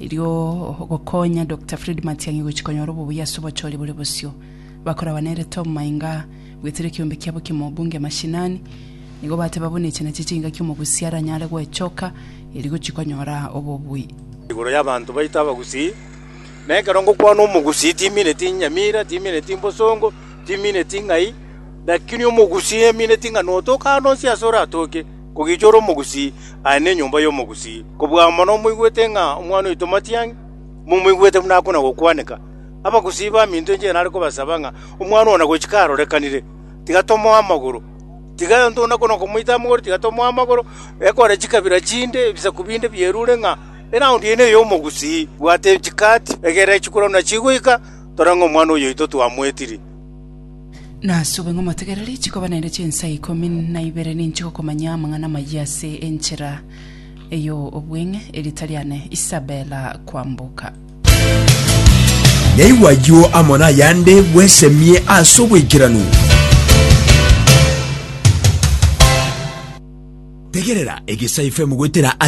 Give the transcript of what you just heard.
Erio ogokonya Doctor Fred Matiang'i gochia konyora obobuya ase obochori bore bosio bakoragwa nere Tom Mainga goetera ekiombe kiabo ki'mo obunge mashinani, nigo bateba buna echi nachio chingaki omogusii aranyare gwechoka erio gochia konyora obobuya. Igoro y'abanto baito abagusii, na ekero ngokwana omogusii timineti enyamira, timineti mbosongo, timineti ng'ai, lakini omogusii emineti ng'a notoka ande onsi ase oratoke. Kogicha ore omogusii, aye nenyomba y'omogusii. Kobua mono moigwete ng'a omwana oito Matiang'i momoigwete buna akona gokwaneka. Abagusii baminto enchera nare kobasaba ng'a omwana one nagochika arorekanire, tiga tomoe amagoro. Tiga onde nakona okomoita amagoro, tiga tomoe amagoro. Ekore chikabira chinde, ebisaku binde bierure ng'a eraund eye neye omogusii. Bwate chikati, egere chikura buna chigoika, tore ng'a omwana oyo oito twamoetirie. Nasube ng'a omotegereri chikoba naende chinsa ikomi na ibere ninche gokomanya amang'ana amayia ase enchera ey'obweng'e, erita riane Isabela kwamboka. Naigwe ayio amo nayande bwesemie ase oboikeranu. Tegerera, egesaifu emogwetera